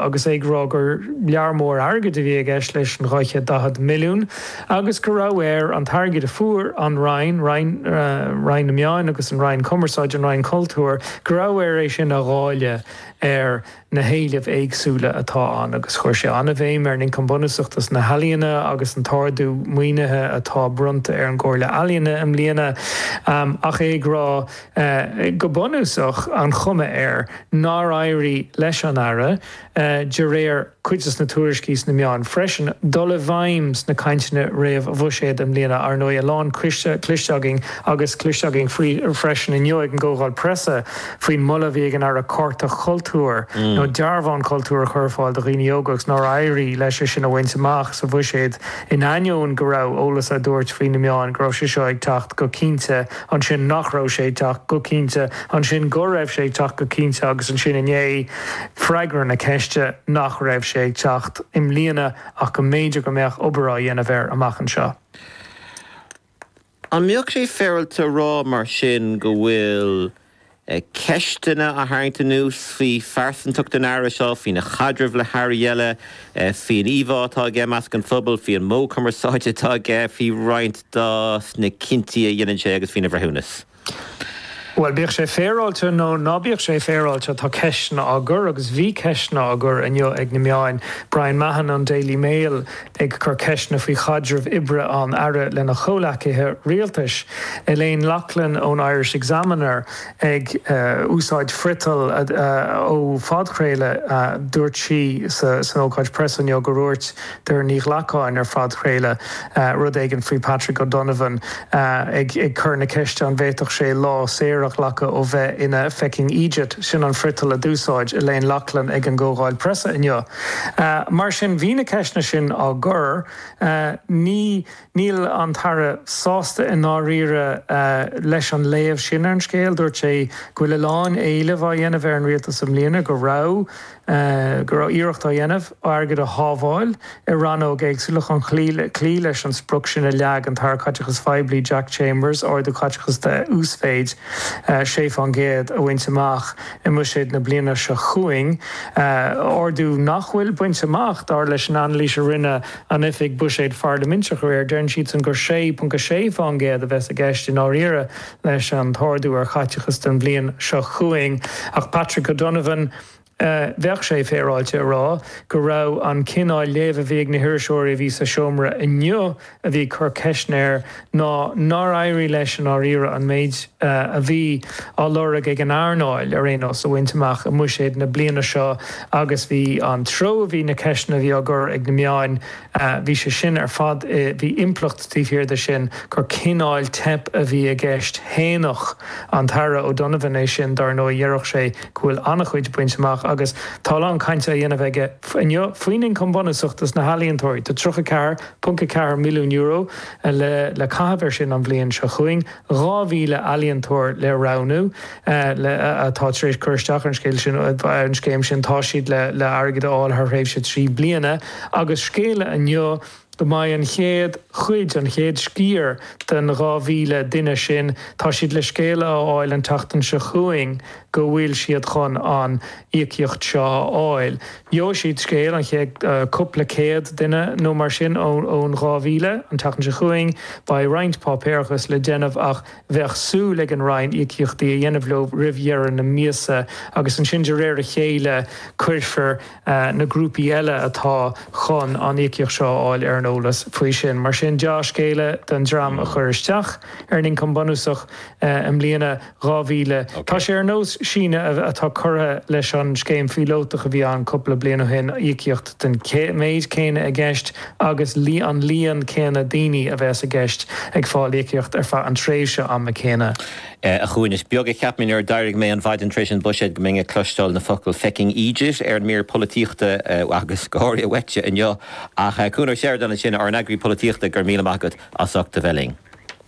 agus é ag rá gur lear mór airgid a bhí i gceist leis an 240 milliún agus go raibh air an t-airgead a fuair an Roinn, Roinn, Roinn na Meán agus an Roinn Cumarsáide, an Roinn Cultúir, go raibh air é sin a dháileadh ar na héilimh éagsúla atá ann agus chuir sé an-bhéim ar an Ioncam Bunúsach dos na hEalaíona agus an t-ardú maoinithe atá bronnta ar an gComhairle Ealaíon i mbliana ach é ag rá go bunúsach, an chuma air nár éirigh leis an Aire, de réir cuid de na tuairiscí sna meáin freisin, dul i bhfeidhm sna cainteanna réamhbhuiséid i mbliana. Ar ndóigh, a lán cloiste againn, agus cloiste againn faoi freisin inniu ag an gComhdháil Preasa, faoin moladh a bhí ag an Aire cárta cultúir, nó dearbhán cultúir, a chur ar fáil do dhaoine óga, agus nár éirigh leis é sin a bhaint amach sa bhuiséad, in ainneoin go raibh eolas á thabhairt faoi sna meáin go raibh sé seo ag teacht go cinnte. ansin nach raibh sé ag teacht go cinnte, ansin go raibh sé ag teacht go cinnte agus ansin inné, freagra na ceiste nach raibh sé ag teacht i mbliana ach go mb'fhéidir go mbeadh obair á dhéanamh air amach anseo. An mbeadh sé féaráilte a rá mar sin go bhfuil ceisteanna á tharraingt anuas faoi phearsantacht an Aire seo, faoina chaidreamh le hAirí eile, faoin íomhá atá aige i measc an phobail, faoi an modh cumarsáide atá aige, faoi roinnt de na cinntí a dhéanann sé agus faoina bhreithiúnas. Bhuel, bíodh sé féaráilte nó ná bíodh sé féaráilte, tá ceisteanna á gcur agus bhí ceisteanna á gcur inniu ag na meáin. Brian Mahon ón Daily Mail ag cur ceisteanna faoi chaidreamh oibre an Aire lena chomhleacaithe rialtais, Elaine Loughlin ón Irish Examiner ag úsáid friotail ó phodchraoladh dúirt sí san ócáid preasa inniu go ndúirt Doireann Ní Ghlacáin ar phodchraoladh rud éigin faoi Patrick O'Donovan ag cur na ceiste an bhféadfadh sé lá saor a ghlacadh ó bheith ina fecking eejit, sin an friotal a d'úsáid Elaine Loughlin ag an gcomhdháil preasa inniu. Mar sin, bhí na ceisteanna sin á gcur. Ní, níl an tAire sásta i ndáiríre leis an léamh sin ar an scéal. Dúirt sé go bhfuil a lán éilimh á dhéanamh ar an Rialtas i mbliana, go raibh, go raibh iarracht á dhéanamh airgead a shábháil i rannóga éagsúla chun cloí, cloí leis an sprioc sin a leag an tAire Caiteachais Phoiblí, Jack Chambers, ardú caiteachais de uasmhéid 6 fán gcéad a bhaint amach. i mBuiséad na bliana seo chugainn, ardú nach bhfuil bainte amach, dar leis an anailís a rinne an Oifig Buiséid Pharlaiminteach aréir. Deireann siadsan gur 6.6% a bheas i gceist i ndáiríre leis an t-ardú ar chaiteachas don bhliain seo chugainn, ach Patrick O'Donovan, bheadh sé féaráilte a rá go raibh an cineál léamh a bhí ag na hiriseoirí a bhí sa seomra inniu, a bhí ag cur ceisteanna air ná nár éirigh leis i ndáiríre an méid a bhí á lorg ag an earnáil ar aon nós a bhaint amach i mbuiséad na bliana seo agus bhí an treo a bhí na ceisteanna a bhí á gcur ag na meáin, bhí sé sin ar fad i, bhí impleacht taobh thiar de sin gur cineál teip a bhí i gceist. Shéanfadh an tAire O'Donovan é sin dar ndóigh, déarfadh sé go bhfuil an-chuid bainte amach agus tá a lán cainte á dhéanamh aige inniu faoin ioncam bunúsach dos na healaíontóirí, tá 34, .4 milliún euro le caitheamh ar sin an bhliain seo chugainn, 2,000 ealaíontóir le roghnú le atá tar éis cur isteach ar an scéal sin, ar an scéim sin. Tá siad le le airgead a fháil thar thréimhse trí bliana agus scéala inniu go mbeidh an chéad chuid, an chéad sciar den 2,000 duine sin, tá siad le scéala a fháil an tseachtain seo chugainn go bhfuil siad chun an íocaíocht seo a fháil. Gheobhaidh siad scéal an chéad chúpla céad duine nó mar sin ón 2,000. An tseachtain seo chugainn beidh roinnt páipéarachas le déanamh ach bheadh súil ag an Roinn íocaíochtaí a dhéanamh leo roimh dheireadh na míosa agus ansin de réir a chéile cuirfear na grúpaí eile atá chun an íocaíocht seo a fháil ar an eolas faoi sin. Mar sin dea-scéala don dream a chuir isteach ar an ioncam bunúsach i mbliana. 2000. Tá sé ar nós síneadh atá curtha leis an scéim phíolótach a bhí ann cúpla bliain ó shin, íocaíocht den méid céanna i gceist agus an líon céanna daoine a bheas i gceist ag fáil íocaíocht ar feadh an tréimhse ama céanna. A Chuain, is beag a cheap mé nuair a d'éirigh mé an mhaidin tar éis an Buiséid go mbeinn ag cloisteáil na focail fecking eejit ar an mír polaitíochta agus go háirithe uaitse inniu. Ach Cuan Ó Seireadáin ansin, ár n-eagraí polaitíochta, go raibh míle maith agat as ucht a bheith linn.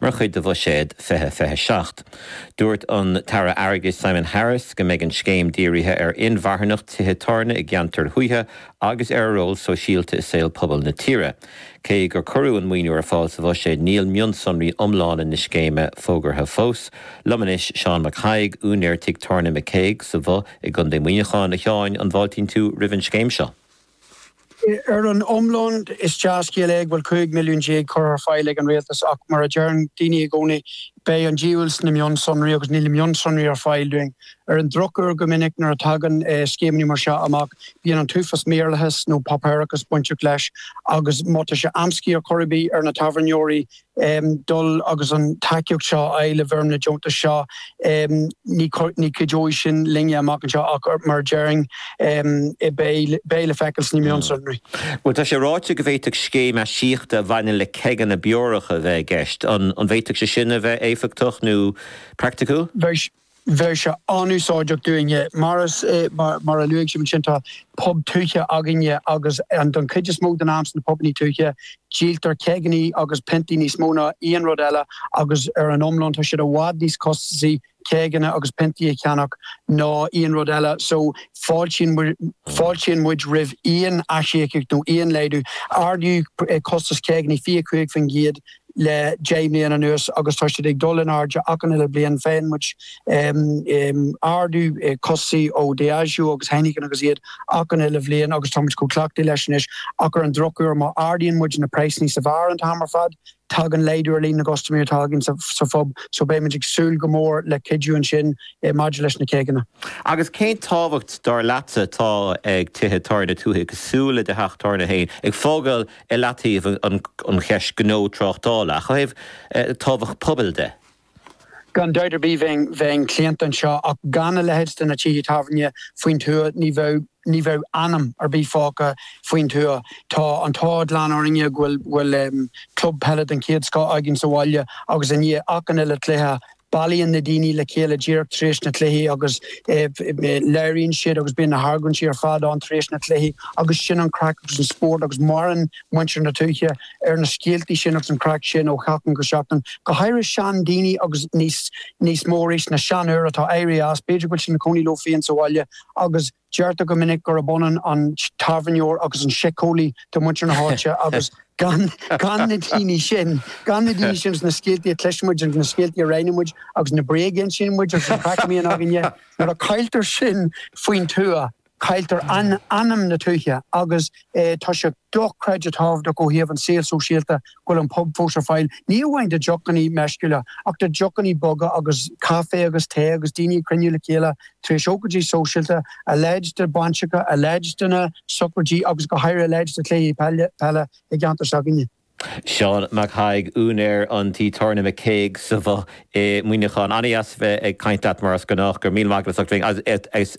Mar chuid de Bhuiséad 2027, dúirt an tAire Airgeadais Simon Harris go mbeidh an scéim dírithe ar inmharthanacht tithe tábhairne i gceantair thuaithe agus ar a ról sóisialta i saol pobail na tíre. Cé gur cuireadh an maoiniú ar fáil sa Bhuiséad, níl mionsonraí iomlána na scéime fógartha fós. Liom anois Seán Mac Thaidhg, úinéir tigh tábhairne McCague sa Bhoth i gContae Mhuineacháin. A Sheáin, an bhfáiltíonn tú roimh an scéim seo? Ar an iomlán, is dea-scéal é go bhfuil 15 milliún curtha ar fáil ag an rialtas ach, mar a deireann daoine i gcónaí, beidh an diabhal sna mionsonraí agus níl mionsonraí ar fáil dúinn. Ar an drochuair, go minic nuair a tagann scéimeanna mar seo amach, bíonn an t-uafás maorlathais nó páipéarachais bainteach leis agus má tá sé amscaí ar chor ar bith ar na tábhairneoirí, dul agus an tacaíocht seo a fháil i bhfoirm na deontas seo. Ní chuideoidh sin linne amach anseo ach mar a déarfainn, beidh le feiceáil sna mionsonraí. Bhuel, tá sé ráite go bhféadfadh scéim aisíochta a bhaineann le ceigeanna beorach a bheith i gceist. An bhféadfadh sé sin a bheith éifeachtach nó praiticiúil? bheadh sé an-úsáideach dúinne. Mar is mar a luaigh sibh ansin, tá pub tuaithe againne agus don chuid is mó den am insna pubanna tuaithe, díoltar ceigeanna agus piontaí níos mó ná aon rud eile agus ar an iomlán tá siad i bhfad níos costasaí ceigeanna agus piontaí a cheannach ná aon rud eile. So, fáiltí fáiltíonn muid roimh aon aisíocaíocht nó aon laghdú. Ardaíodh costas ceigeanna 25% le deich mbliana anuas agus tá siad ag dul in airde achan uile bliain. Faigheann muid ardú costais ó Diageo agus Heineken agus iad achan uile bhliain agus tá muid chomh cleachtaithe leis anois ach ar an drochuair má ardaíonn muid na praghsanna sa bheár an t-am ar fad tagann laghdú ar líon na gcustaiméirí atá againn sa phub so beidh muid ag súil go mór le cuidiú ansin maidir leis na ceigeanna. Agus cén tábhacht, dar leatsa, atá ag tithe tábhairne tuaithe cosúil le do theach tábhairne féin ag fágáil i leataobh an cheist gnó tráchtála, ach ó thaobh tábhacht pobail de. Gan dabht ar bith bheinn claonta anseo, ach gan a leithéid de na tithe tábhairne faoin tuath ní bheidh ní bheidh anam ar bith fágtha faoin tuath. Tá an t-ádh glan orainne go bhfuil club peile den chéad scoth againn sa bhaile agus i ndiaidh achan uile chluiche, Bailíonn na daoine le chéile díreach tar éis na cluichí agus labhraíonn siad agus bíonn na hargóintí ar fad ann tar éis na cluichí agus sin an craic agus an spórt agus maireann muintir na tuaithe ar na scéaltaí sin agus an chraic sin ó sheachtain go seachtain, go háirithe seandaoine agus níos mó arís na seanfhir atá éirithe as, b'fhéidir go bhfuil siad ina cónaí leo féin sa bhaile agus. Deirtear go minic gurb ionann an tábhairneoir agus an síceolaí do mhuintir na háite agus gan na daoine sin, gan na daoine sin, na scéaltaí a chloiseann muid, na scéaltaí a roinneann muid agus na bréaga a insíonn muid agus an chraic a bhíonn againne, nuair a chailltear sin faoin tuath, cailltear anam na tuaithe agus tá sé. dochreidte tábhachtach ó thaobh an saol sóisialta go bhfuil an pub fós ar fáil, ní amháin do dheochannaí meisciúla, ach do dheochannaí boga agus caife agus tae agus daoine ag cruinniú le chéile tar éis ócaidí sóisialta, a leithéid de bhainiseacha, a leithéid de na socraidí agus go háirithe a leithéid de chluichí peile i gceantar s'againne. Seán Mac Thaidhg, úinéir an tí tábhairne McCague sa Bhoth i Muineachán. Ana-dheas a bheith ag caint leat mar is gnách. Go raibh míle maith agat as ucht.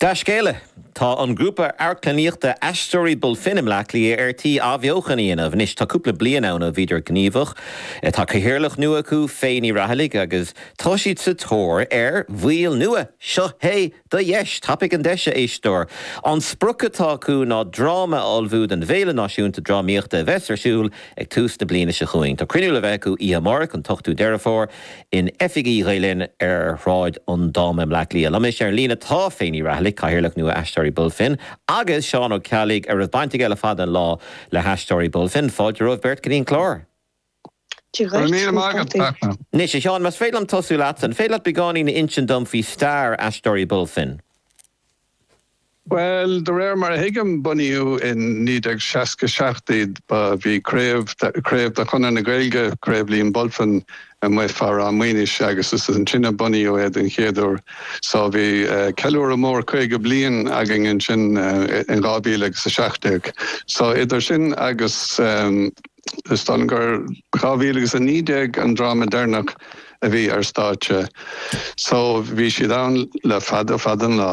Dea-scéala! Tá an grúpa amharclannaíochta Aisteoirí Bulfin i mBleá Cliath ar tí athbheochan a dhéanamh. Anois tá cúpla bliain ann ó bhíodar gníomhach. Tá cathaoirleach nua acu, Fay Ní Raghallaigh, agus tá siad sa tóir ar bhaill nua. Seo é do dheis! Tapaigh an deis, a éisteoir! An sprioc atá acu ná dráma a ullmhú don bhFéile Náisiúnta Drámaíochta a bheas ar siúl ag tús na bliana seo chugainn. Tá cruinniú le bheith acu oíche amárach, an t-ochtú Deireadh Fómhair, In oifigí Ghael Linn ar Shráid an Dáma i mBleá Cliath liom anois ar an líne atá Faye Ní Rathallaigh, Cathaoirleach nua Aisteoirí Bulfin, agus Seán Ó Ceallaigh, a raibh baint aige le fada an lá le hAisteoirí Bulfin. Fáilte romhaibh beirt, go dtí an clár! Go raibh míle maith agat, Fachtna. Anois, a Sheáin, más féidir liom tosú leatsa, an féidir leat beagáinín a insint dom faoi stair Aisteoirí Bulfin? Bhuel, de réir mar a thuigim, bunaíodh i 1967 iad. Ba, bhí craobh, craobh de Chonradh na Gaeilge, Craobh Liam Bulfin, amuigh fá Ráth Maonais agus is ansin a bunaíodh é den chéad uair. So, bhí ceiliúradh mór 50 bliain againn ansin in dhá mhíle agus a seacht déag. So, idir sin agus, is dóigh liom gur dhá mhíle agus a naoi déag an dráma deireanach a bhí ar stáitse. So, bhí siad ann le fada, fada an lá.